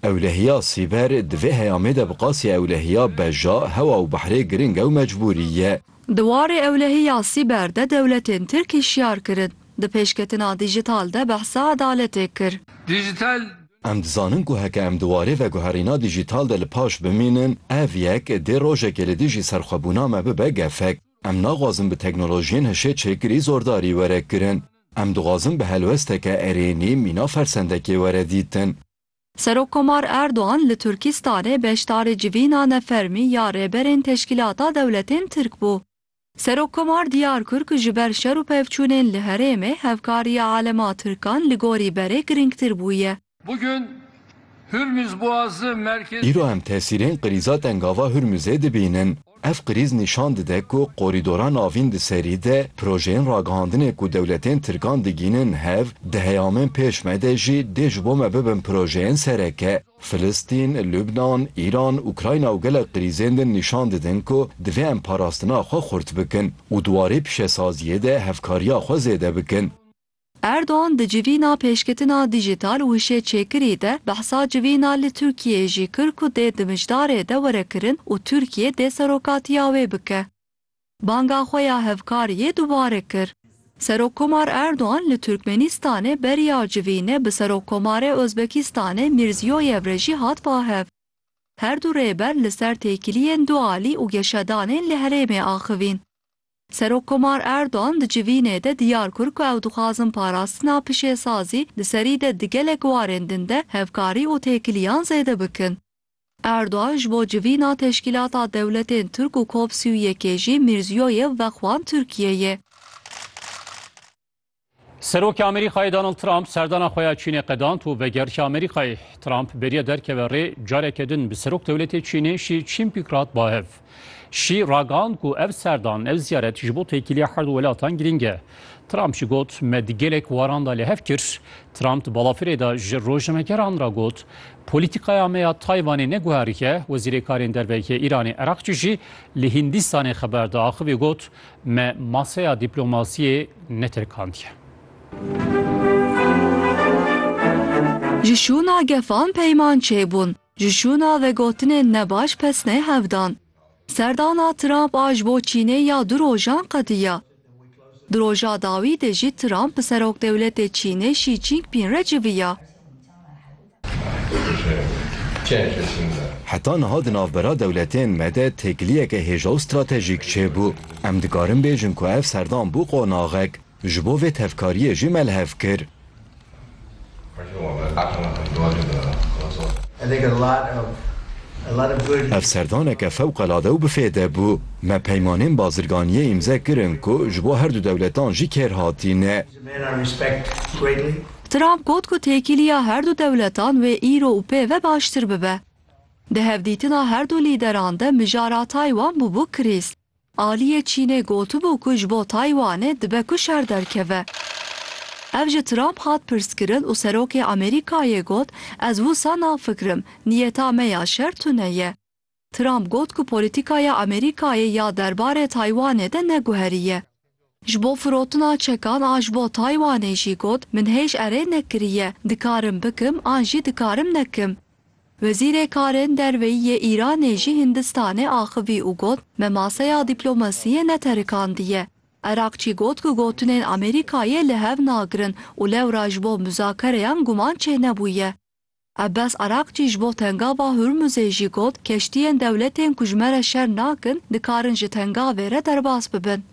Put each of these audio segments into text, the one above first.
Ewlehiya sîber, di vê heyamê de bi qasî ewlehiya beja, hewa û behrê giring e û mecbûrî ye. Di warê ewlehiya sîber de dewletên Tirk hişyar kirin. Di pêşketina dîjîtal de behsa edaletê kir. Dîjîtal. Em dizanin ku heke em di warê veguherîna dîjîtal de li paş bimînin, ev yek dê rojekê li dijî serxwebûna me bibe gefek. Em naxwazin bi teknolojiyên hişê çêkirî zordarî were kirin. Em dixwazin bi helwesteke erênî mîna fersendekê were dîtin. Serokkomar Erdogan li Tirkîstanê beşdarê civîna nefermî ya Rêberên Teşkîlata Dewletên Tirk bû. Serokkomar diyar kir ku ji ber şer û pevçûnên li herêmê hevkariya alema Tirkan li gorî berê girîngtir bûye. Îro em tesîrên qirîza tengava Hurmuzê dibînin. Ev krîz nîşan dide ku korîdora navîn di serî de projeyên ragihandinê ku dewletên tirkan digînin hev, di heyamên pêş me de jî dê ji bo me bibin projeyên sereke. Filistîn, Lubnan, Îran, Ukrayna û gelek krîzên din nîşan didin ku divê em parastina xwe xurt bikin û di warê pişesaziyê de hevkariya xwe zêde bikin. Erdogan di civîna pêşketina dîjîtal û hişêçêkirî de behsa civîna li Tirkiyeyê jî kir ku dê di mijdarê de were kirin û Tirkiye dê serokatiya wê bike. Banga xwe ya hevkariyê dubare kir. Serokkomar Erdogan li Tirkmenistanê beriya civîne bi Serokkomarê Ozbekistanê Mîrziyoyev re jî hat bahev. Her du rêber li ser têkiliyên dualî û geşedanên li herêmê axivîn. Serokkomar Erdogan di civînê de diyar kir ku ew dixwazin parastina pişêsazî di serî de di gelek warên din de hevkarî û têkiliyan zêde bikin. Erdogan ji bo civîna Teşkîlata Dewletên Tirk û COP sî û yekê jî Mîrziyoyev vexwand Tirkiyeyê. Serokê Amerîkayê Donald Trump serdana xwe ya Çînê qedand û vegerike Amerîkayê. Trump bêriye derkeve rê careke din bi serok dewletê Çînê Şî Çînpîk re hat bahev. Şî ragihand ku ev serdan, ev ziyaret ji bo têkiliya her du welatan girîng e. Trump jî got, Me di gelek waran de li hev kir. Trump di balafirê de ji rojnamegeran re got, Polîtîkaya me ya Taywanê ne guherike, Wezîrê Karên Derve yê Îranê Erakçî jî li Hîndîstanê xeber da axivî got, Me masaya dîplomasiyê netirkandiye. Ji şûna gefan peyman çêbûn, ji şûna vegotinên nebaş pesnê hevdan. Serdana Trump a ji bo Çînê ya du rojan qediya. Di roja dawî de jî Trump bi Serokdewletê Çînê Xi Jinping re civiya. Heta niha di navbera dewletên me de têkiliyeke hêja û stratejîk çêbû. Em dikarin bêjin ku ev serdan bû qonaxek. Ji bo vê tevkariyê jî me li hev kir. Ev serdaneke fewqelade û bi fêde bû. Me peymanên bazirganiyê îmze kirin ku ji bo herdu dewletan jî kêrhatî ne. Trump got ku têkiliya her du dewletan wê îro û pê ve baştir bibe. Di hevdîtina her du lîderan de mijara Taywan bûbû krîz. Aliyê Çînê gotibû ku ji bo Taywanê dibe ku şer derkeve. Ev ji Trump hat pirskirin û Serokê Amerîkayê got, Ez wisa nafikirim, niyeta me ya şer tune ye. Trump got ku polîtîkaya Amerîkayê ya derbarê Taywanê de ne guherî ye. Ji bo firotina çekan a ji bo Taywanê jî got, Min hêj erê nekiriye, dikarim bikim an jî dikarim nekim. Wezîrê Karên Derveyî yê Îranê jî Hindistanê axivî û got, Me maseya dîplomasiyê neterikandiye. Erakçî got ku gotinên Amerîkayê li hev nagirin û lewra ji bo muzakereyan guman çênebûye. Abbas Araqçî ji bo Tengava Hurmuzê jî got, Keştiyên dewletên ku ji me re şer nakin, dikarin ji tengavê re derbas bibin.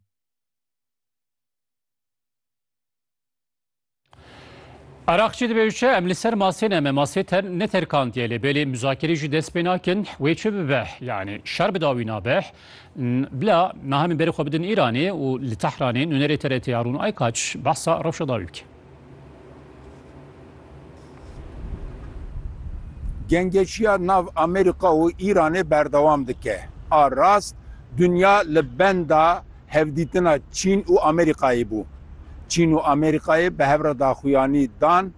Araqçî dibêje, Em li ser masê ne me masê neterkandiye lê belê muzakirê jî dest pê nakin, wê çi bibe? Yanî şer bi dawî nabe? Bila niha em ê berê xwe bidin Îranê û li Tehranê nûnerê TRT ya Rûn Aykaç behsa rewşa dawî bike. Gengeşiya nav Amerîka û Îranê berdewam dike. A rast dinya li benda hevdîtina Çîn û Amerîkayê bû. Çîn û Amerîkayê bi hev re daxuyanî dan,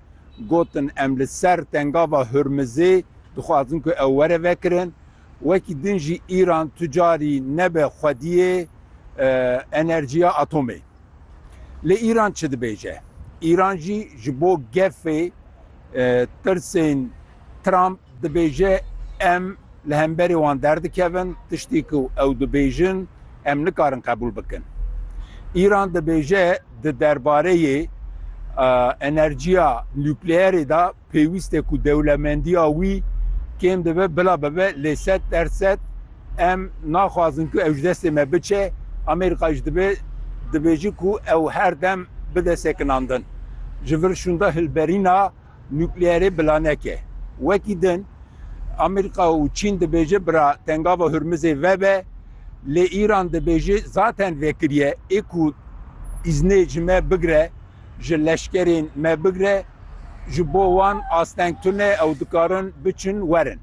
gotin em li ser tengava Hurmizê dixwazin ku ew were vekirin. Wekî din jî Îran tu carî nebe xwediyê enerjiya atomê. Lê Îran çi dibêje? Îran jî ji bo gefê tirsên Trump dibêje em li hemberê wan derdikevin, tiştî ku ew dibêjin em nikarin qebûl bikin. Îran dibêje di derbareyê enerjiya nukleerê de, Pêwîst e ku dewlemendiya wî kêm dibe bila bibe lê sed der sed em naxwazin ku ew ji destê me biçe. Amerîka jî dibe dibêjin ku ew her dem bide sekinandin ji vir şûnda hilberîna nukleerê bila neke. Wekî din Amerîka û Çîn dibêje bira Tengava Hurmizê vebe lê Îran dibêje zaten vekiriye ê ku îznê ji me bigire. Ji leşkerên me bigre ji bo wan asteng tune ew dikarin biçin werin.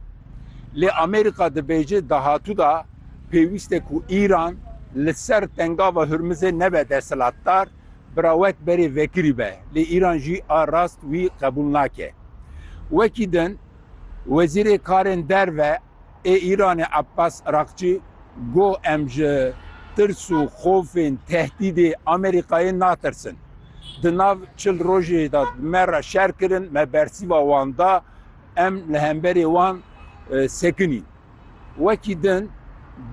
Lê Amerîka dibêje dahatû de pêwîste ku Îran li ser tengava Hurmizê nebe desthilatdar, bira wek berê vekirî be. Lê Îran jî a rast wî qebûl nake. Wekî din Wezîrê Karên Derve Ê Îranê Abbas Araqçî got em ji tirs û xofên tehdîdê Amerîkayê natirsin. Di nav çil rojê de me re şer kirin, me bersîva wan da, em li hemberê wan sekinîn. Wekî din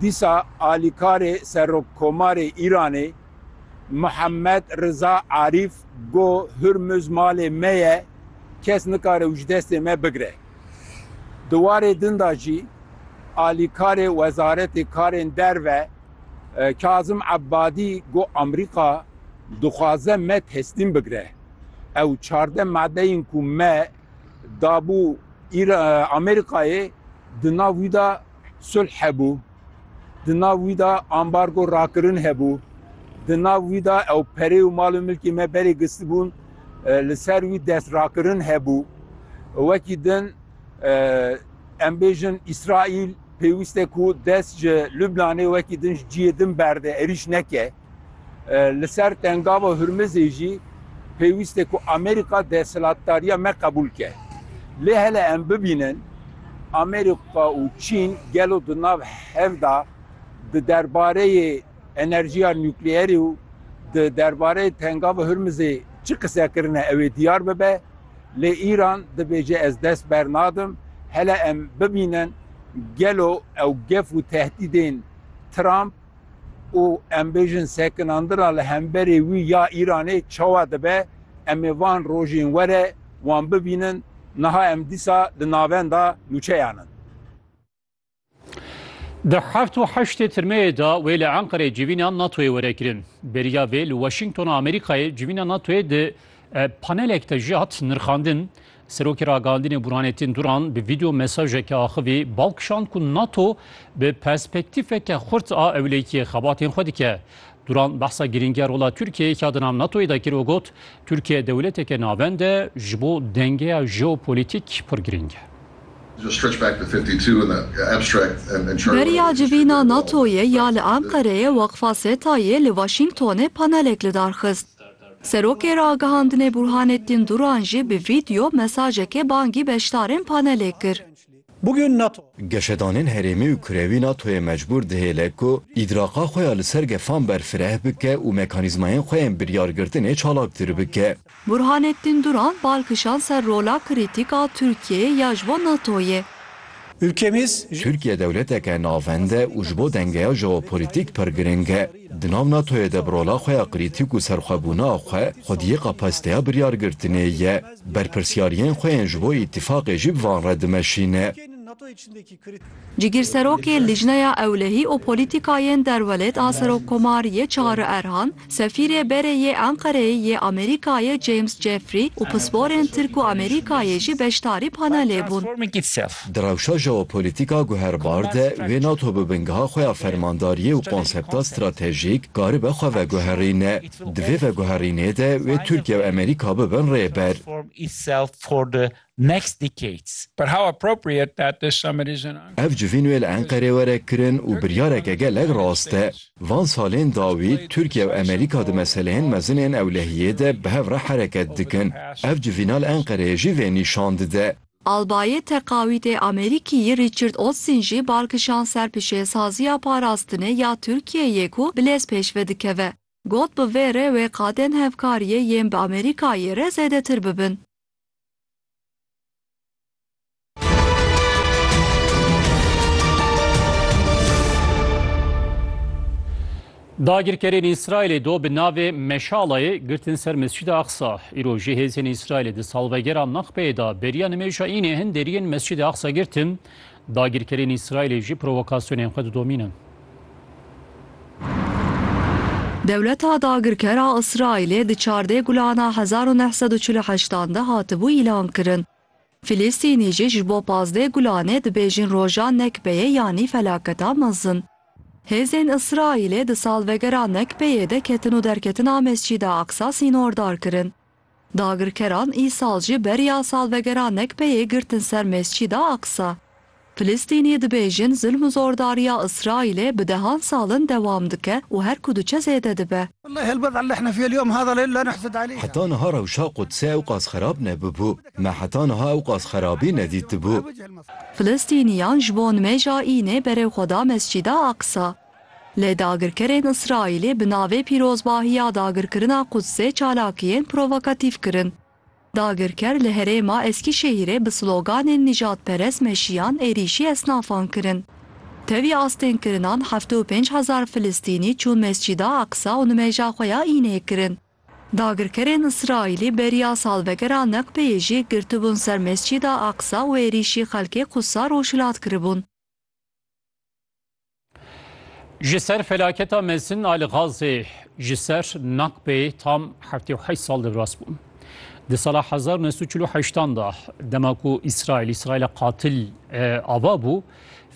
dîsa alîkarê Serokkomarê Îranê Muhammed Riza Arîf got Hurmuz malê me ye, kes nikare û ji destê me bigire. Di warê din de jî alîkarê Wezaretê Karên Derve Kazim Ebadî got Amerîka dixwaze me teslîm bigire. Ew çardeh madeyên ku me dabû Amerîkayê di nav wî de sulh hebû. Di nav wî de ambargo rakirin hebû. Di nav wî de ew perê û mal û milkê me berê gistibûn, li ser wî destrakirin hebû. Wekî din em bêjin Îsraîl pêwîste ku dest ji Lubnanê wekî din ji ciyê din berde, êrîş neke. Li ser Tengava Hurmizê jî pêwîst e ku Amerîka desthilatdariya me qebûl ke. Lê hele em bibînin Amerîka û Çîn gelo di nav hev de di derbareyê enerjiya nukleerê û di derbareyê Tengava Hurmizê çi qise kirine ew ê diyar bibe. Lê Îran dibêje ez dest bernadim. Hele em bibînin gelo ew gef û tehdîdên Trump, û em bêjin sekinandina li hemberê wî ya Îranê çawa dibe, em ê van rojên were wan bibînin, niha em dîsa di navenda nûçeyan in. Di heft û heştê tirmeyê de wê li Enqereyê civîna NATOyê were kirin. Beriya vê li Washingtona Amerîkayê civîna NATOyê di panelek de jî hat nirxandin. Serokê Ragihandinê Burhanettin Duran bi vîdeo mesajeke axivî bal kişand ku NATO bi perspektîfeke xurt a ewlekiyê xebatên xwe dike. Duran behsa girîngiya rola Tirkiyeyê ka di nav NATOyê de kir û got, Tirkiye dewleteke navend e, ji bo dengeya jeopolîtîk pir girîng e. Beriya civîna NATOyê ya li Enqereyê weqfa SETAyê li Washingtonê panelek lidarxist. Serokê Ragihandinê Burhanettin Duran jî bi vîdyo mesajekê bangî beşdarên panelê kir. Geşedanên herêmî û kurewî NATO'yê mecbûr dihêle ku îdraka xwe ya li ser gefan berfireh bike û mekanîzmayên xwe yên biryargirtinê çalaktir bike. Burhanettin Duran bal kişand ser rola krîtîk a Tirkiyeyê ya ji bo NATO'yê. Tirkiye dewleteke navend e û ji bo dengeya jeopolitîk pir giring e. Di nav NATO'yê de bi rola xwe ya krîtîk û serxwebûna xwe, xwediyê kapasiteya biryargirtinê ye. Berpirsyariyên xwe yên ji bo îtîfaqê jî bi van re dimeşîne. Cigîrserokê Lijneya Ewlehî û Polîtîkayên Derwelêt a Serokkomariyê Çağrı Erhan, Sefîrê Berê yê Enqereyê yê Amerîkayê James Jeffrey û pisporên Tirk û Amerîkayê jî beşdarî panelê bûn. Di rewşa jeopolîtîk a guherbar de wê NATO bi bingeha xwe ya fermandariyê û konsepta stratejîk karibe xwe veguherîne. Di vê veguherînê de wê Tirkiye û Amerîka bibin rêber. Ev civîn wê li Enqerê were kirin û biryareke gelek rast e. Van salên dawî Tirkiye û Amerîka di meseleyên mezin ên ewlehiyê de bi hev re hereket dikin. Ev civîna li Enqereyê jî vê nîşan dide. Albayê Teqawîtê Amerîkîyî Richard Olson jî bar kişand ser pişêsaziya parastinê ya Tirkiyeyê ku bi lez pêşve dikeve. Got bi vê re wê qadên hevkariyê yên bi Amerîkayê re zêdetir bibin. Dagirkerên Îsraîlê do bi navê Meşalayê girtin ser Mescida Aqsa. Îro jî hêzên Îsraîlê di salvegera Nakbeyê de beriya nimêja Înê hin deriyên Mescida Aqsa girtin. Dagirkerên Îsraîlê jî provokasyonên xwe didomînin. Dewleta dagirker a Îsraîlê di çardeh gulana hezar û neh sed û çil û heştan de hatibû îlankirin. Filistînî jî ji bo pazdeh gulanê dibêjin roja Nekbeyê yanî felaketa mezin. Hêzên Îsraîlê di salvegera Nekbeyê de ketin û derketina Mescîda Aqsa sînordar kirin. Dagirkeran îsal jî beriya salvegera Nekbeyê girtin ser Mescîda Aqsa. Filistînî dibêjin zilm û zordariya Îsraîlê bi dehan sal in dewam dike û her ku diçe zêde dibe. Heta niha rewşa Qudsê ewqas xerab nebûbû. Me heta niha ewqas xerabî nedîtibû. Filistînîyan ji bo nimêja Înê berê xwe da Mescîda Aqsa. Lê dagirkerên Îsraîlî bi navê pîrozbahiya dagirkirina Qudsê çalakiyên provokatîf kirin. Dagirker li herêma Eskîşehîrê bi sloganên nîjadperest meşiyan êrîşî esnafan kirin. Tevî astênkirinan heftê û pênc hezar Filistînî çûn Mescîda Aqsa û nimêja xwe ya Înê kirin. Dagirkerên Îsraîlî beriya salvegera Neqbeyê jî girtibûn ser Mescîda Aqsa û êrîşî xelkê Qûdsa rojhilat kiribûn. Ji ser felaketa mezin a li Gazê ji ser Nakbê tam heftê û heşt sal devras bû. Di sala hezar û neh sed û çil û heştan de dema ku Îsraîl Îsraîla qatil eh, ava bû,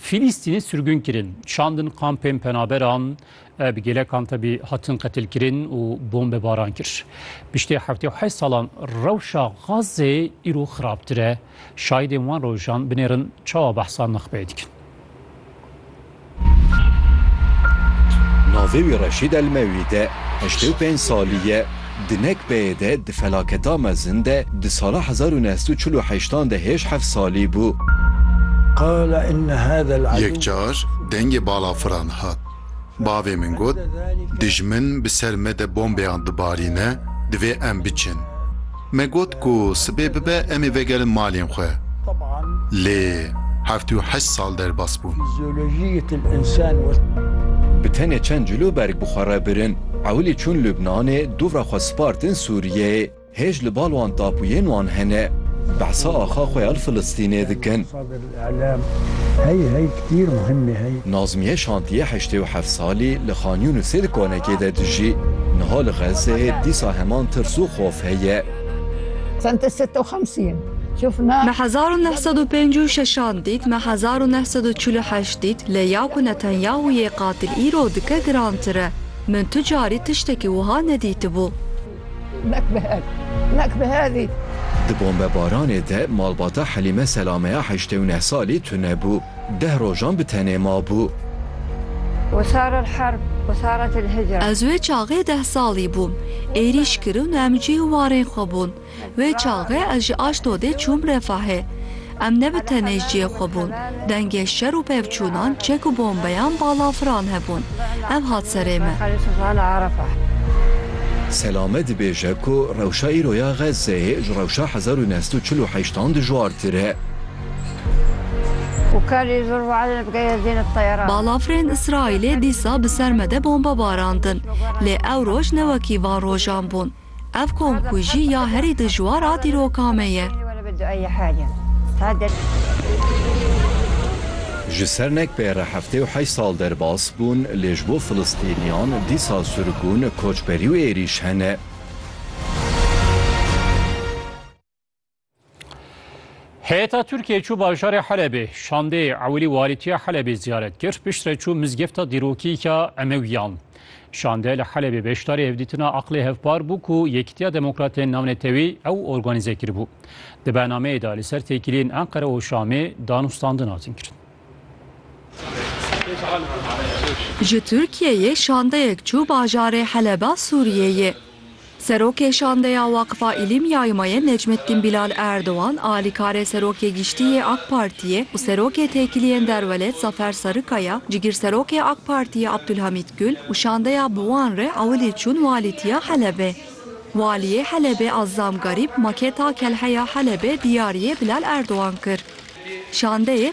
Fîlîstînê sirgûn kirin, şandin kampên penaberan, eh, bi gêlekan tevî hatin qetilkirin û bombebaran kir. Piştî heftê û heşt salan rewşa Gazê îro xirabtir e. Şahîdên wan rojan binêrin çawa behsa nuxbeyê dikin. Navê wî Reşîd Elmewîd e, heştê û pênc salî ye. Di nekbeyê de di felaketa mezin de di sala hezar û neh sed û çil û heşt an de hêj heft salî bû. Yekcar dengê balafiran hat. Bavê min got, Dijmin bi ser me de bombeyan dibarîne, divê em biçin. Me got ku sibê bibe em ê vegerin malên xwe. Lê heft û heşt sal derbas bûn. Bi tenê çend cilo berg bi xwe re birin, ewilî çûn Lubnanê, dûvra xwe spartin Sûriyeyê. Hêj li bal wan tapûyên wan hene. Behsa axa xwe ya li Filistînê dikin. Nazmiye şantiyê heştê û heft salî li Xan Yûnisê di konekê de dijî. Niha li Xezzeyê dîsa heman tirs û xof heye. Me hezar û neh sed û pênc û şeşan dît, me hezar û neh sed û çil û heşt dît, lê ya ku Netanyahu yê qatil îro dike girantir e. Min tu carî tiştekî wiha nedîtibû. Di bombebaranê de malbata Helîme Selameya heştê û neh salî tune bû. Deh rojan bi tenê mabû. Ez wê çaxê deh salî bûm. Êrîş kirin û em cih û warên xwe bûn. Wê çaxê ez ji Aşdodê çûm Refahê. Em ne bi tenê cihê xwe bûn. Dengê şer û pevçûnan, çek û bombeyan balafiran hebûn. Ev hat serê me. Selame dibêje ku rewşa îro ya Xezzeyê ji rewşa hezar û neh sed û çil û heşt an dijwartir e. Balafirên Îsraîlê dîsa bi ser me de bombe barandin. Lê ew roj ne wekî van rojan bûn. Ev komkujî ya herî dijwar a dîroka me ye. Ji ser nekbê re heftê û heşt sal derbas bûn lê ji bo filistîniyan dîsa sirgûn, koçberî û êrîş hene. Heyeta Tirkiyê çû bajarê Helebê, şandê ewilî walîtiya Helebê ziyaret kir, piştre çû mizgefta dîrokîka Emewiyan. Şande li Helebê beşdarî hevdîtina aqlê hevpar bû ku Yekîtiya Demokratên Navnetewî ew organîze kiribû. Di bernameyê de li ser têkiliyên Enqere û Şamê danûstandin hatin kirin. Ji Tirkiyeyê şandeyek çû bajarê Heleba Sûriyeyê. Serokê şandeya Waqfa Îlîm Yaymayê Necmettin Bilal Erdogan, alîkarê Serokê Giştî yê AK Partiyê û Serokê Têkiliyên Derwelêt Zafer Sarikaya, Cigîrserokê AK Partiyê Abdulhamît Gul û şandeya bi wan re ewilî çûn Walîtiya Helebê. Waliyê Helebê Azzam Garîb maketa Kelheya Helebê diyariyê Bilal Erdogan kir. Şandeyê.